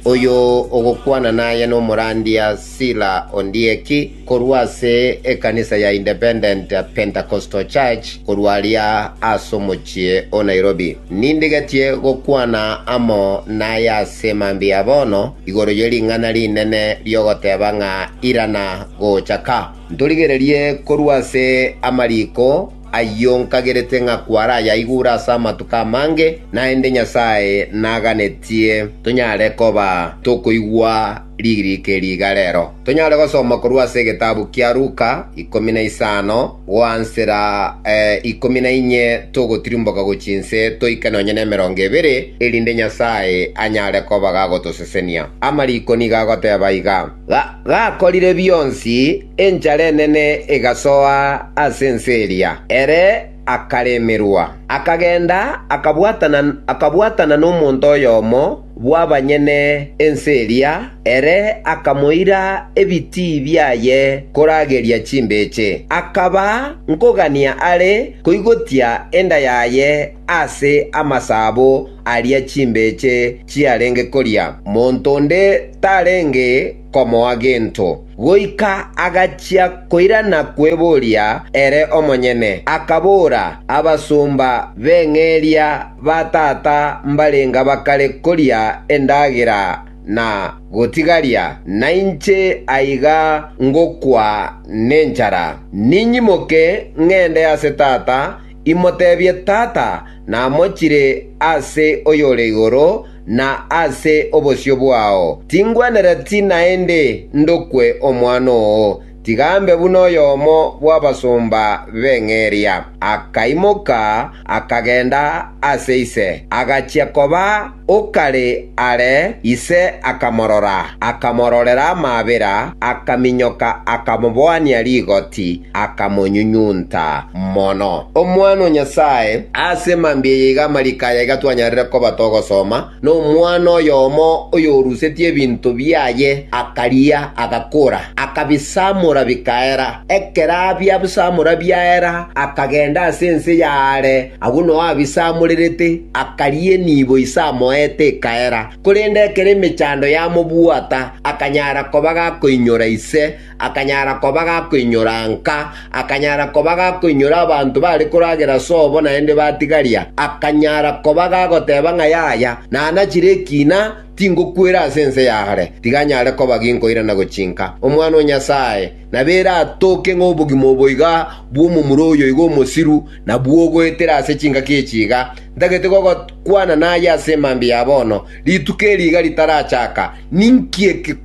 Oyo ogokwana naye nomorandia Sila Ondieki, korwa ase ekanisa ya Independent Pentecostal Church korwa aria ase omochie o Nairobi. Nindigetie gokwana amo naye ase mambia bono igoro ye ring'ana rinene ri'ogoteba ng'a irana gocha ka. Ntorigererie korwa ase amariko, Ayio nkagerete ng'a kwarayaigure ase amatuko amange, naende Nyasae naganetie tonyare koba tokoigwa ririko eri iga rero. Tonyare gosoma korwa ase egetabu kia Luka, ikomi na isano, goansera ikomi na inye togotirimboka gochia inse toike nonye nemerongo ebere, erinde Nyasae anyare koba gagotosesenia. Amariko nigo agoteba iga. gakorire bionsi, enchara enene egasoa ase ense eria, ere akaremerwa. Akagenda akabwatana nomonto oyomo bw'abanyene ense eria, ere akamoira ebitii biaye korageria chimbeche. Akaba nkogania are koigotia enda yaye ase amasabo, aria chimbeche chiarenge koria, monto onde tarenge komoa gento, goika agachia koirana kweboria ere omonyene, akabora, Abasomba b'eng'eria ba tata mbarenga bakare koria endagera na gotigaria, nainche aiga ngokwa nenchara. Ninyimoke ng'ende ase tata, Imotebie Tata namochire ase oyore igoro na ase obosio bwao, tingwenereti naende ndokwe omwana oo, tiga ambe buna oyomo bw'abasomba b'eng'eria. Akaimoka, akagenda ase ise, agachia koba. Okare are ise akamorora, akamororera amaabera, akaminyoka, akamoboania rigoti, akamonyunyunta mono. Omwana o Nyasae ase mambia eye iga amariko aya iga twanyarire koba togosoma, Nomwana oyomo oyorusetie ebinto biaye akaria, agakora, akabisamora bikaera. Ekero abiabsamora biaera, akagenda ase ense y'aare. Agwo nao Abisa amorerete, akaria enibo ise amoete ekaera. Korende ekero emechando yamobwata, akanyara koba gakoinyora ise, akanyara koba gakoinyora nka, akanyara koba gakoinyora abanto bare koragera sobo naende batigaria, akanyara koba gagoteba ng'a yaya, nanachire ekina, tingokwera ase ense yare, tiga nyare koba ginkoirana gochinka Omwana o Nyasae. na beratooke ng'a obogima obo iga bw'omomura oyo iga omosiru nabwo ogoetera ase chingaki echi iga, ntagete gokwana naye ase emambia ya bono, rituko eri iga ritarachaka. Ninki eke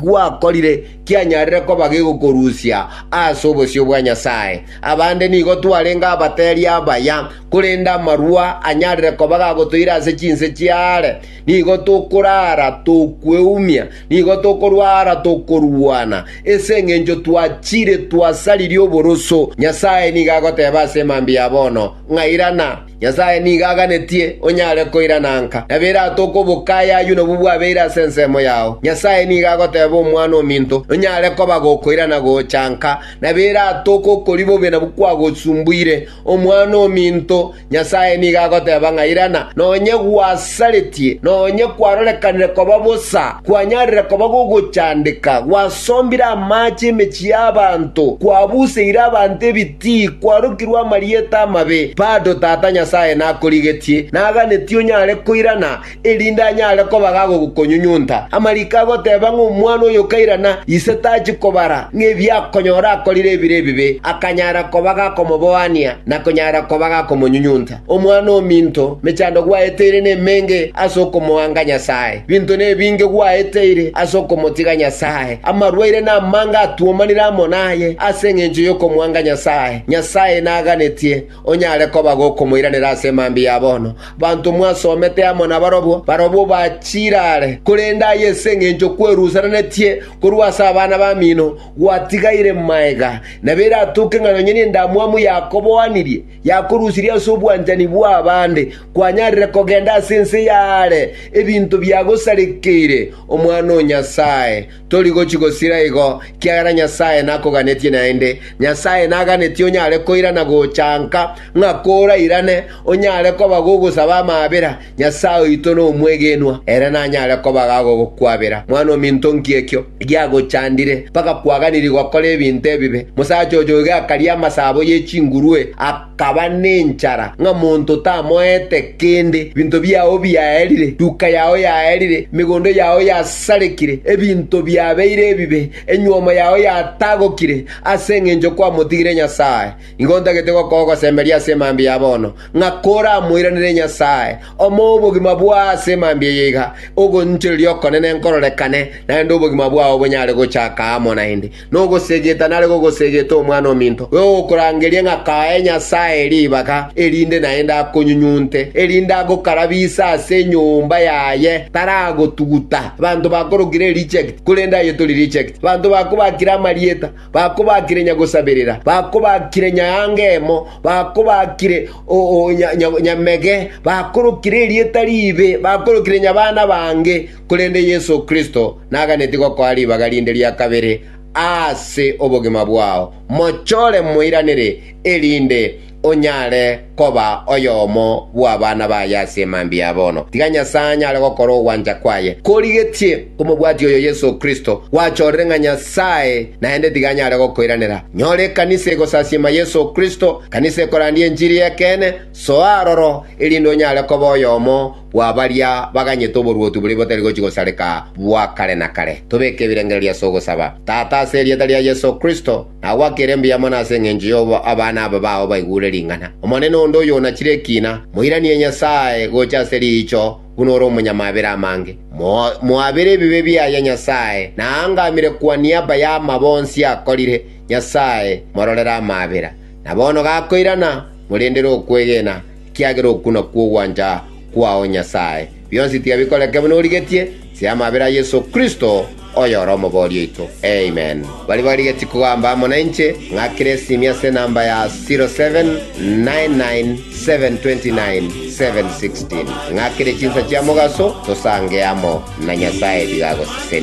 gwakorire kianyarire koba gegokorusia ase obosio bwa Nyasae? Abande nigo twarenge abateeri abaya, korende amarua anyarire koba gagotoira ase chinse chiaare. Nigo tokoraara tokweumia, nigo tokorwara tokorwana, ase engencho twachire twasaririe oboroso. Nyasae nigo agoteba ase emambia ya bono, ng'a irana. Nyasae nigo aganetie onyare koirana nka, na biratoke obokayi ayio nabwo bwabeire ase ensemo yao. Nyasae nigo agoteba Omwana-o-minto, nonyare koba gokoirana gocha nka, na biratoke okori bobe nabwo kwagosumbuire. Omwana-o-minto, Nyasae nigo agoteba ng'a irana, nonye gwasaretie, nonye kwarorekanire koba bosa, kwanyarire koba gogochandeka, gwasombire amaache emechie y'abanto, kwabuseire abanto ebitii, kwarokirwe amarieta amabe, bado Tata Nyasae nakorigetie, naganetie onyare koirana, erinde anyare koba gagokonyunyunta. Amariko agoteba ng'a omwana oyo okairana ise tachi kobara ng'ebiakonyora akorire ebire ebibe, akanyara koba gakomoboania na konyara koba gakomonyunyunta. Omwana ominto, mechando gwaeteire nemenge ase okomoanga Nyasae. Binto nebinge gwaeteire ase okomotiga Nyasae. Amarwaire namange atwomanire amo naye ase engencho yokomoanga Nyasae. Nyasae naganetie. onyare koba gokomoiranera ase emambia ya bono, banto mwasomete amo nabarobwo, barobwo bachiire are, korende aye ase engencho kwerusananetie korwa ase abana bamino gwatigaire magega, nabo eratoke ng'a nonya nendamwamu yakoboanirie, yakorusirie ase obwanchani bw'abande, kwanyarire kogenda ase ense y'aare ebinto biagosarekeire omwana o Nyasae. Tori gochi gosira igo, ekiagera Nyasae nakoganetie naende. Nyasae naganetie onyare koira na gocha nka, ng'a korairane, onyare koba gogosaba amaabera. Nyasae oito nomwegenwa, ere nanyare koba gagogokwabera. Mwan'ominto, nki ekio giagochandire, mpaka kwaganirie gokora ebinto ebibe? Mosacha oyoiga akaria amasabo ye chingurwe, kaba nenchara, ng'a monto tamoete kende, ebinto biao biaerire, duka yao yaerire, emegondo yao yasarekire, ebinto biabeire ebibe, enyuomo yao yatagokire, ase engencho kwamotigire Nyasae. Igo ntagete gokoa ogosemberia ase emambia ya bono, ng'a koramoiranere Nyasae, omoe obogima bwao ase emambia eye iga, ogoinchoreria okonene nkororekane, naende obogima bwao bonyare gochaka amo naende. Nogosegeta nare gogosegete omwana ominto, igo gokorangeria ng'a kae Nyasae ribaga, erinde naende akonyunyunte, erinde agokarabise ase enyomba yaye. Taragotuguta. Abanto bakorokire reject, korende aye tori reject. Abanto bakobakire amarieta, bakobakire nyagosaberera, bakobakire nyaanga emo, bakobakire nyamege, bakorokire erieta riibe, bakorokire nyabana bange, korende Yeso Kristo naganetie gokoa ribaga rinde ria kabere ase obogima bwao, mochore moiranere, erinde onyare koba oyomo bw'abana baye ase emambia ya bono. Tiga Nyasae anyare gokora ogwancha kwaye korigetie komobwatia oyo Yeso Kristo gwachorire ng'a Nyasae naende tiga anyare gokoiranera. Nyora ekanisa egosasiima Yeso Kristo, ekanisa ekorandia enchiri y'ekeene, soa aroro, erinde onyare koba oyomo bwa baria baganyete oboruoti boria botari gochia gosareka bwa kare na kare. Tobeke ebirengererio ase ogosaba. Tata, ase erieta ria Yeso Kristo, nagwakire embuya mono ase engencho y'obo abana aba bao baigure ring'ana. Omonene onde oyo onachire ekina, moiranie Nyasae gocha ase riicho buna ore omonyamabera amange. Moabere ebibe biaye Nyasae, na aangamire kwa niaba y'amabo onsi akorire. Nyasae, mororere amabera. Na bono gakoirana, morendere okwegena. Ekiagera oku nakwo ogwancha kwao Nyasae. Bionsi tiga bikoreke buna origetie, ase amabera a Yeso Kristo, oyore Omoboori oito. Amen. Baria barigetie kogamba amo nainche, ng'akere esimi ase enamba ya 0799729716. Ng'akere chinsa chia mogaso, tosange amo na Nyasae biga agosesenie.